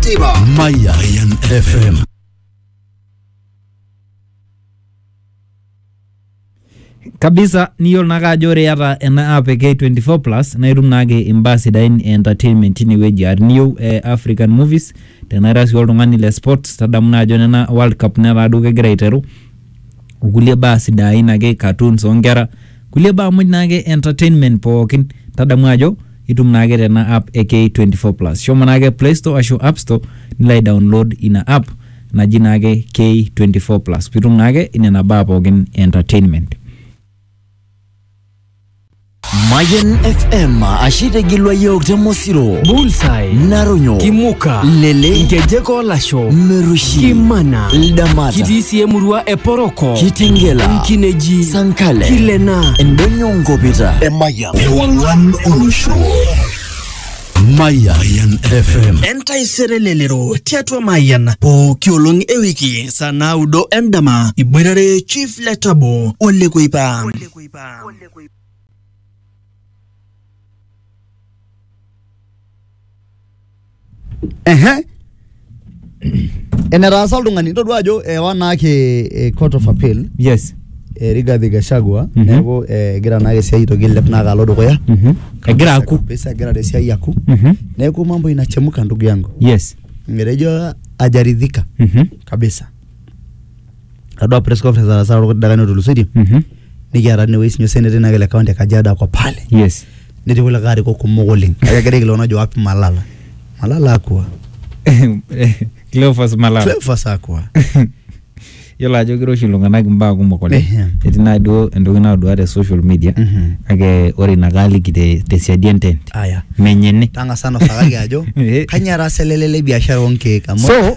Tiba. Mayan FM. kabisa niyiolo naake ajo ore iyata ena app e K24 plus naa itum naake imbaa sidain e entertainment tinewueji aa tiniyieu eh, African movies tenaa ira sii oltung'ani le sports tadamu naa ajo nena World Cup netaa duo kegira aiteru okulie baa sidain ake cartoons onkera kulie baa muj naake entertainment pookin tadamu ajo itum naake tena app e K24 plus shomo naake play store ashu app store nilo ai download ina app naji naake K24 plus pitum naake inena baa pookin e entertainment Mayan FM ashitigilwa yiok te Mosiro, Bullseye, Naronyo, Kimuka, Lele, Nkejek Olasho, Merushi, Kimana, Ldamata, kitii sii emurua e Poroko, Kitengela, Nkineji, Sankale, Kilena, Endonyo Nkopita, Emayian, Ewang'an Olosho. Mayan FM. Entaisere lelero tiatua Mayian pooki olong ewiki saa naudo endama iboitare Chief Letabo Ole Kuipa. Bam. Ole koi. Ehe. Enetaasa oltung'ani todua ajo ewa naake eh, court of appeal yes eh, Rigathi Gachagua Mhm. neeku eh, egira naake esiai aitoki ailep naake alo dukuya Mhm. egira aku Kabisa egira te siai aku Mhm. neeku mambo inachemuka ndugu yangu yes etejo ajaridhika Mhm. kabisa atodua press conference nataasa too dakikani otulusoitie Mhm. nikiata tinewueji sinye osenetai nake le county e kajiado ako pale yes netii kulikae arikok kumok oleng kake egira aikilikuan ajo wapi malala malala akua Cleophas Malala Cleophas akua yiolo ajo kiroshi iltung'anak imbaa kumok oleng Ehem. etii naa duo entoki naodua te social media Mhm. kake ore ina kaaliki te tesiadi entent aya menye ene tang'asa nosakaki ajo Eh. kanyio etaasa ele lele biashara onkeek amu So,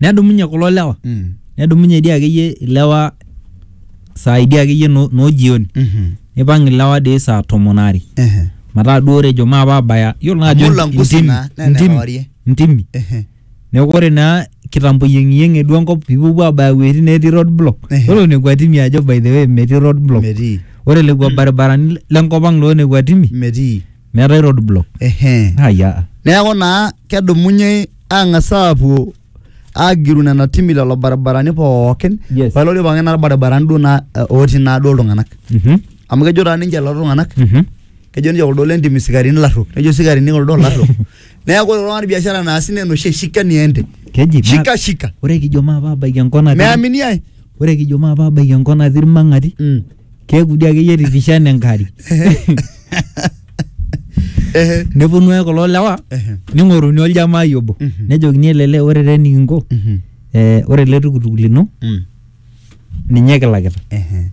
nedumunye kulo lewa Mm. nedumunye dii akeyie ilewa saai dii akeyie no, no jioni Mhm. nipang ilewa dii saa tomon aare Ehe. mataa duo ore ejo maape abaya yiolo naa ajo Amu langusi intimi- naa, naa intimi- enewarie. intimi Ehe. neeku ore naa kitambo iyieng'iyieng'e duo enkop pipuopuo abaya iwuejitin netii road block Ehe. ore nekua timi ajo by the way metii road block Metii. ore lekua baribarani lenkop ang loo nekua timi Metii. meetae road block ehe haya neeku naa kedumunye ang'as aapuo agiru nena timi lelo baribarani pookin Yes. pailo ore pookin naa irbaribarani duo naa eh, otii naa duo iltung'anak Mhm, amu kejo taa ninche lelo tung'anak mhm. kejo ninche kuldo lentim isikarini larruok nejo isikarini kuldo larruok neeku ore oltung'ani biashara naasi naa enoshi shika niende keji ma- shika shika ore kijo maapabaiki enkona meamini ai Ore kijo maapabaiki enkop natii ilmang'ati, Mm. keeku dii akeyie tirrishana enkari. Ehe. Neponu ake kulo lewa Ehe. ning'oruni oljamai obo. Mhm. Nejokini ele lee ore taa enikinko, Mhm. eh, ore ele tukutuk lino Mm. ninye kilakita. Ehe.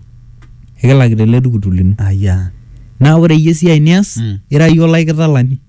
Ekilakita ele tukutuk lino. Aya. Naa ore iyie esiai nias, Mm. ira iyie olaikitalani.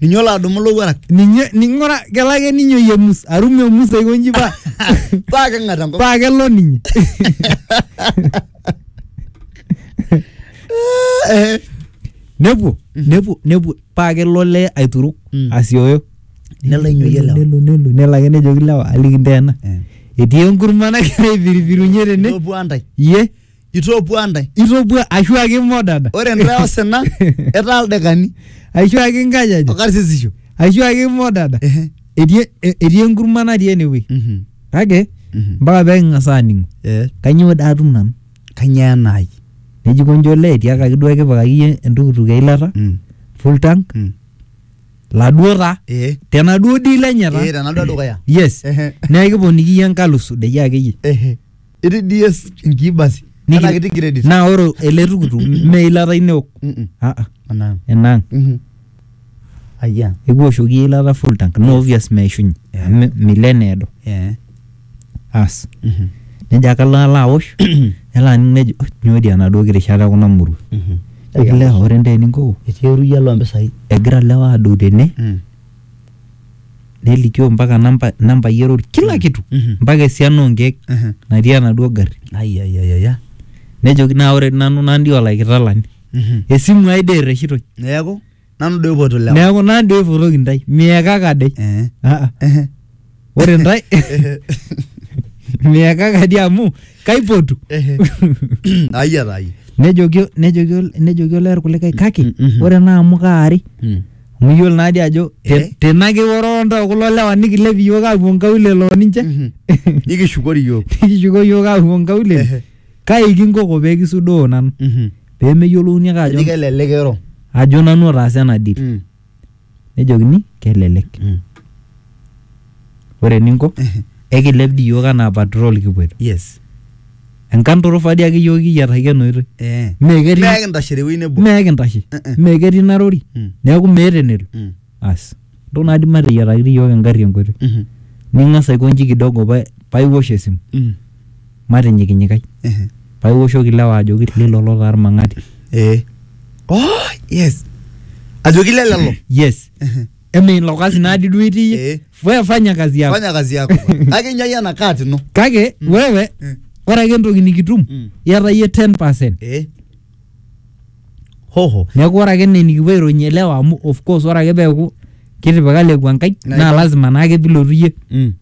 Ninye olo adumu ilowuarak. ninye ning'ura kelo ake ninye oyemus arum emus aiko nji paa Paa keng'at enkop. paa kelo ninye Eh, nepuo nepuo nepuo paa kelo olee aituruk Mm. asioyo Nelo ainyoyie lewa. nelo nelo nelo ake nejoki lewa aliki nteena Eh. etii enkurma nagira aipiripirunye tene Lopuo antai. iye Itopua ntae. itopua ashu ake imodada Ore ntae osina, etaa ildekani ashu ake inkajajik okarsisisho. ashu ake imodada Ehe. etii e- etii enkurma natii enewueji Mhm. kake Mhm. mpaka pee king'as aaning'u Eh, kainyoo doi atum nanu Kanyoo enaai? neji konji olee etiakaki duo kipikaki iyie entukutuk eilata Mm, full tank mm. laduo taa Eh, tenaduo deal enye eh, taa tenaduo dukuya. yes Ehe. neeku kiponiki iyie enkalifu dei akeyie Ehe. Itii DS inkii basi. Niki- Enaa kitii credit. Naa ore ele tukutuk mme eilata ino eok. Mm-mm. Ah, ah, Enaa. enaang. Mhm. Ayia. Ekiwoshoki eilata full tank. Naa obvious meishunye. Yeah. Amu milo eneedo. Eh. Aas. Mhm. Nejo ake alo alo awosh. Nelo aning nejo "Oh, nyoo dii enaduo kirishata ekuna murua. Mhm. Ejo lewa ore ntaa eninko Etii eruyiaa loo mpisai. egira lewa adou tene Mm. nelikio mpaka namba nambai erori kila kitu Mhm. mpaka esiana onkeek Mhm. natii enaduo garri Ai, ai, ai, ai, ai. nejoki naa ore nanu nandi olaikitalani Mhm. esimu ai dee erreshitoi neeku nanu doi oipoto lewa neeku nandi oipotoki ntae miekaka dei Eh. Ah, ah. Ehe. ore ntae miekaka dei amu kaipotu Ehe. Ai ata ai. nejoki nejoki nejoki olee irkulikae kake Mm, mhm. ore naa amu kaari Mm. amu iyiolo naadi ajo te- Eh. tena kiwororo ntoo kulo lewa nikilep iyiook aapuo nkaulele oo ninche Mhm. Nikishukori iyiok. nikishuko iyiook aapuo Ehe. nkaulele kai kinkoko pee kisudoo nanu Mhm. pee meyiolouni ake ajo Eji kelelek ero. ajo nanu otaasa ena deal Mm. nejokini kelelek Mm. ore eninko Ehe. ekilep dii iyiook anaa patrol kipuoito yes enkanturufaa dii ake iyiook kiyiataki ena oitoi eh Mee ketii- Mee kintashe tewuei nebo mee kintashe Eh, eh. mee ketii narori Mm. neeku meeta enelo Mm. as ndo naadi mateyiataki dii iyiook engarri enkoitoi Mhm. ning'as aikonji kidogo pa- paiwosh esimu Mm. matinyikinyikai Ehe. paa iwoshoki ilewa ajoki lilolo taa irmang'ati Eh. Oh, yes. Ajoki lelelo. yes Ehe. eme ilo kasi naadi duo itii Eh. we fanya kazi yako Fanya kazi yako. Kake inyayie ena kat ino. kake wewe Mm. ore ake entoki nikitum Mm. iyata iyie 10 percent Eh. Hoho. neeku ore ake nee nikipuo aironyie ilewa amu of course ore ake peeku kitipika lekua nkai Na- naa lazima naake pilotu iyie Mm.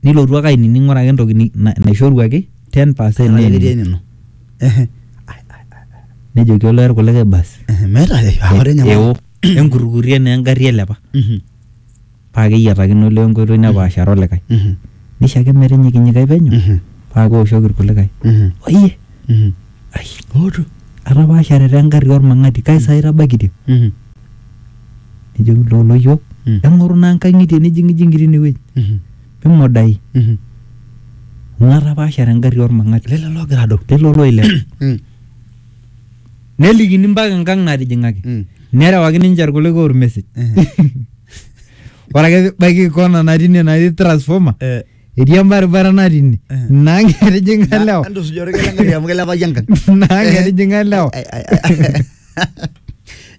nilotu ake ainining ore ake entoki ni- na- naishoruaki 10 percent Ore ake etii neining. enino. Ehe. nejoki olee irkulikae basi Ehe, meeta ai- ah, ore enyamali. eo enkurrukurrie naa engarri elepa Mhm, paa keyiatakino olee enkoitoi nepaashare olikae mhm, nisho ake metinyikinyikai penyo mhm, paa keoshoki irkulikae mhm, oyie mhm. Ai. Ootu. Atapaashare te ngarri olmang'ati kai saa itabaikitia? Mhm. Nejoki loo loyiok Mm. eng'oru naa nkang'itie nijing'ijing'i tine wueji Mhm. mimodai Mhm. amu atapaashare engarri olmang'ati Lelo loogira adou. lelo looilep. Mm. Nelikini mpaka enkang' natijing'aki. Mm. Nerewaki ninche ilkulikae olmesej. Ore ake pibaiki kona natii ine natii transformer Eh. etii embaribara natii ine naa ketijing'a lewa Entusuja orkeek engari amu kilepaki enkang. naa ketijing'a lewa Ai, ai, ai.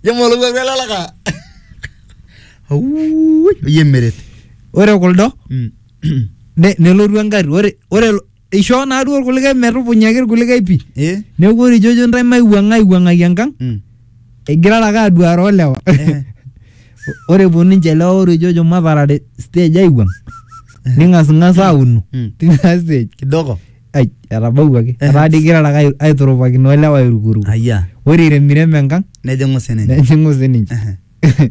Ijo molowuaru ele laka. Auuui, oyie meret. ore kuldo Mm. ne- nelotu engari ore ore ishoo naaduo irkulikae metupunyaki irkulikae pii Eh? neeku ore ijojo ntae maiwuang'a aiwuang'aki enkang Mm. Igirara ake aduare olewa. Eh. Ore epuo ninche lewa orejojo matarare stage aiwuang. Ning'asng'as aauno Mm. tina stage. Kidogo. Ai, etabawuaki. Eh. Etaa dii igirara ake ai- aiturupakinoo ilewa airukuruku. Ayia. Ore iremirem enkang Nejing'u sininye. nejing'u sininche. Ehe.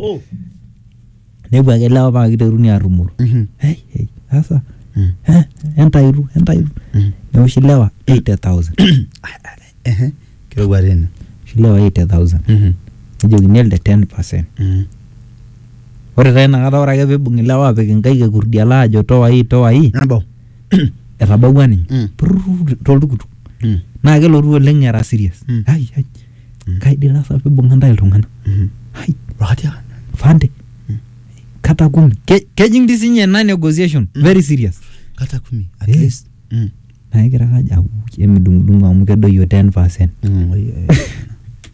oh. nepuo ake lewa paa kiteruni aarrumoro Mhm. hey, hey, sasa Mm. eh, entairu entairu Mm. neoshi lewa 80000 Ehe. kirowua tena oshi lewa 80000 Mhm. nejokini elde 10 percent Mhm. ore taa inakata ore ake peibung ilewa apik inkaik ekurdiala ajo towai towai nabau etabawua ninye Mm. Prrrr, toltukutuk Mm. naa kelotu oleng era serious Mm. ai ai nkaidilasa pibung'a ntae iltung'ana hai Rotia. fande kata kumi Ke- kejing dii sinye ena negotiation very serious Kata kumi. At Eh. least. Mm. naa egira ake ajo "Au, emidung'udung'u amu kedoyio 10 percent Mm, oi, eh.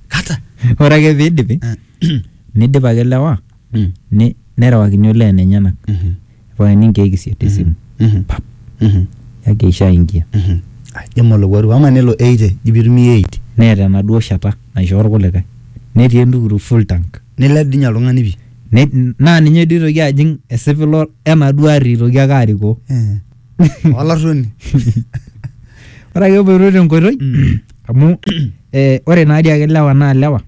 Kata. ore ake piidipi Eh. nidip ake lewa Ne- nerewakini olee enenyenak irriwakini inkeek isiet esimu pap yaki aisho aingia Ai, jama olowuaru ama nelo eight eh, ji pitumia eight neeta enaduo shata naishoo irkulikae netii entukutuk full tank nilep dinye oltung'ani pii Ne- naa ninye duo oitoki ajing esipilo enaduo arri eitoki ake arikoo Eh, olarruoni ore ake epoito tenkoitoi amu eh, ore naadii ake ilewa naa ilewa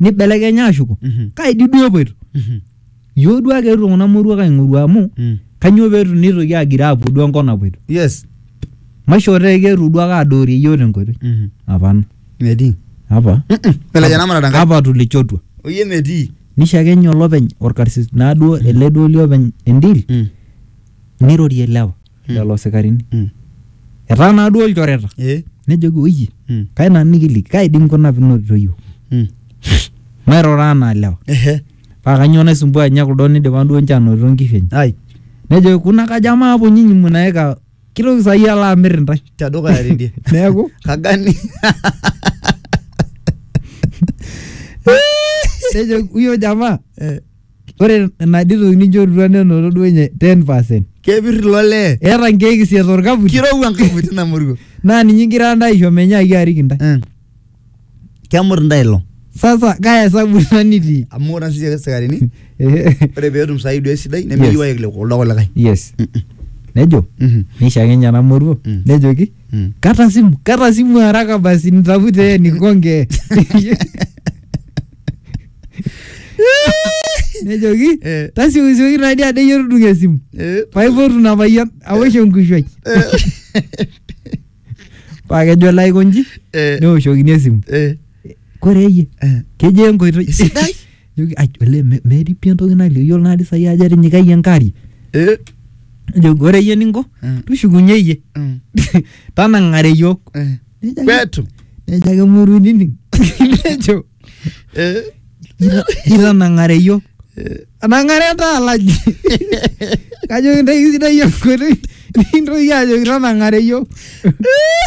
nibelekenya ashuko Mhm. kaidi duo epoito Mhm. yioo duo ake eetuo kuna moruak aing'oru amu Mm. kanyoo peetu nitoki agiroo apuo duo enkop napoito yes maishoo tee keetuo duo ake adoorie yioo tenkoitoi Mhm. apana metii apa Mm-mm. pelekenya namarata nkai apa tulichotua oyie metii nishakenye olopeny orkarsis naaduo ele duo liopeny endil Mm. nirorie lewa Mm. lelo sikarini Mm. etaa naa duo ilchoreta Eh. nejoki oye Mm. kai nanu nikiliki kai dii nkuna pinotito yiok Mm. mairura anaa lewa Ehe. paa kanyoo naisumbua ninye kuldo nidipa duo ninche anotito nkishu enye Ai. nejoki kuna kajo amaa apuo nyinyi munaeka kitoki saai alo amir intae Tedukuya tidie. neeku Kagani. nejoki huyo jamaa Eh. Ore ina dii toki nijorutua nenoto duo ninye 10%. Kepir ilo lee. Eeta nkeek isiet orkaputi. Kirowua enkaputi ina murua. Naa ninye igira ntae aisho menyaaki arik intae. Eh. Kemut intae ilo. Sasa kaa esabu ina nitii? Amu ore sisi ake isikarini, Ehe. ore petum saai duo esidai, nemeyieu aik kuldo kulikae. Yes. Nejo, Mhm. neisho ake ninye ena moruo, Mm. nejoki, Mm. kata simu, kata simu haraka basi nitafute yeye nikonge. nejoki Eh. tasiokisioki taadi adeyie tudung esimu Eh. paipotu ina payian awosh enkushuai paa kejo lai konji Eh. neoshokini esimu Eh. kore eyie Eh. kejo enkoitoi Sidai. Joki, "Ai, ole me- metii pii entoki nalio yiolo naadi sai ajo etinyikayie enkari Eh. nejoki ore iyie ninko Mm. tushukunye iyie Mm. tanang'are yiok Eh. Nejo ake- Petu. nejo ake muru nining nejo Eh. "Ita- itanang'are iyiok anang'are taa alaji kajo kintaiki sidai iyiok nkoitoi nikintoki ajo itanang'are iyiok